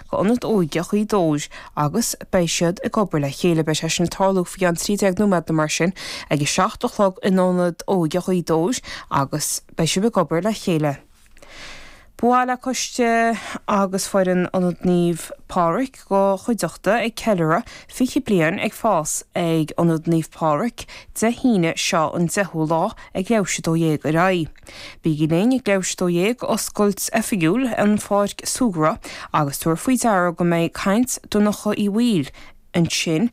go Ionad Óige Ghaoth Dobhair agus beidh siad ag obair le chéile. Beidh sé sin ag tarlú faoi cheann 13 nóiméad nó mar sin ag a seacht a chlog in Ionad Óige Ghaoth Dobhair agus beidh siad ag obair le chéile. Ba mhaith le coiste agus foireann Ionad Naomh Pádraig do chuideachta ag ceiliuradh 20 bliain ag fás ag Ionad Naomh Pádraig Dé hAoine seo an 10ú lá ag a 12 ar aghaidh. Bígí linn ag a 12:00, oscailt oifigiúil an Pháirc Súgradh, agus tabhair faoi deara go mbeidh caint Dhonncha Uí Bhaoill ansin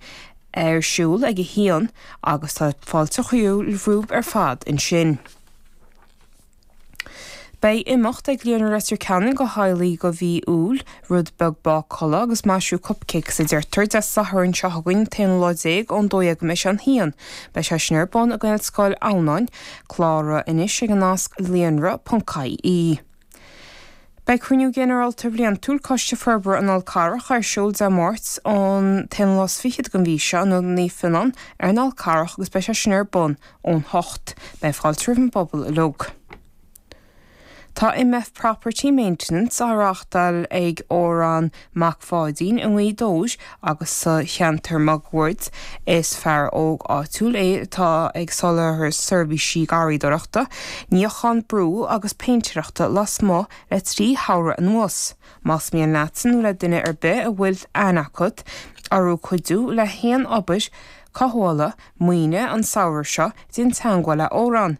ar siúl ag a haon agus tá fáilte romhaibh ar fad ansin. Beidh imeacht ag Líonra Leitir Ceanainn do Highlight de mhí Iúil, rud beag bácála agus maisiú cupcakes, deirtear, Dé Sathairn seo chugainn, t-aon lá déag ón dó dhéag go leath i ndiaidh a haon, beidh sé sin ar bun i nGaelscoil Adhamhnáin, Cláraigh anois ag an nasc líonra ponc ie Beidh Cruinniú Ginearálta Bliantúil Coiste Forbartha an Fháil Charraigh ar siúl Dé Máirt an t-aon lá is fichead den mhí seo in Ionad Naomh Fionán ar an Fhál Charrach agus beidh sé sin ar bun ón hocht. Beidh fáilte roimh an phobal uilig. Tá MF Property Maintenance á reáchtáil ag Odhrán Mac Pháidín i nGaoth Dobhair agus sa cheantar máguaird. Is fear óg áitiúil é atá ag soláthar seirbhísí garraíodóireachta, níochán brú agus péintéireachta lasmuigh le trí shamhradh anuas. Más mian leatsa nó le duine ar bith a bhfuil aithne agat orthu cuidiú le haon obair cothabhála maoine an samhradh seo, déan teagmháil le Odhrán.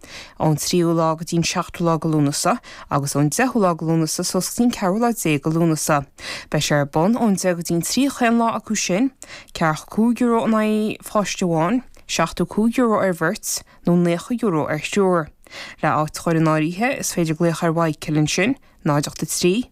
Ón tríú lá go dtí an seachtú lá de Lúnasa, agus ón deichiú lá de Lúnasa suas go dtí an ceathrú lá déag de Lúnasa. Beidh sé ar bun ón deich go dtí an trí achan lá acu sin. Ceathracha cúig euro in aghaidh pháiste amháin, seachtó cúig euro ar bheirt, nó naocha euro ar thriúr. Le áit a chur in áirithe, is féidir glaoch ar Mhichael ansin, náid ocht a trí,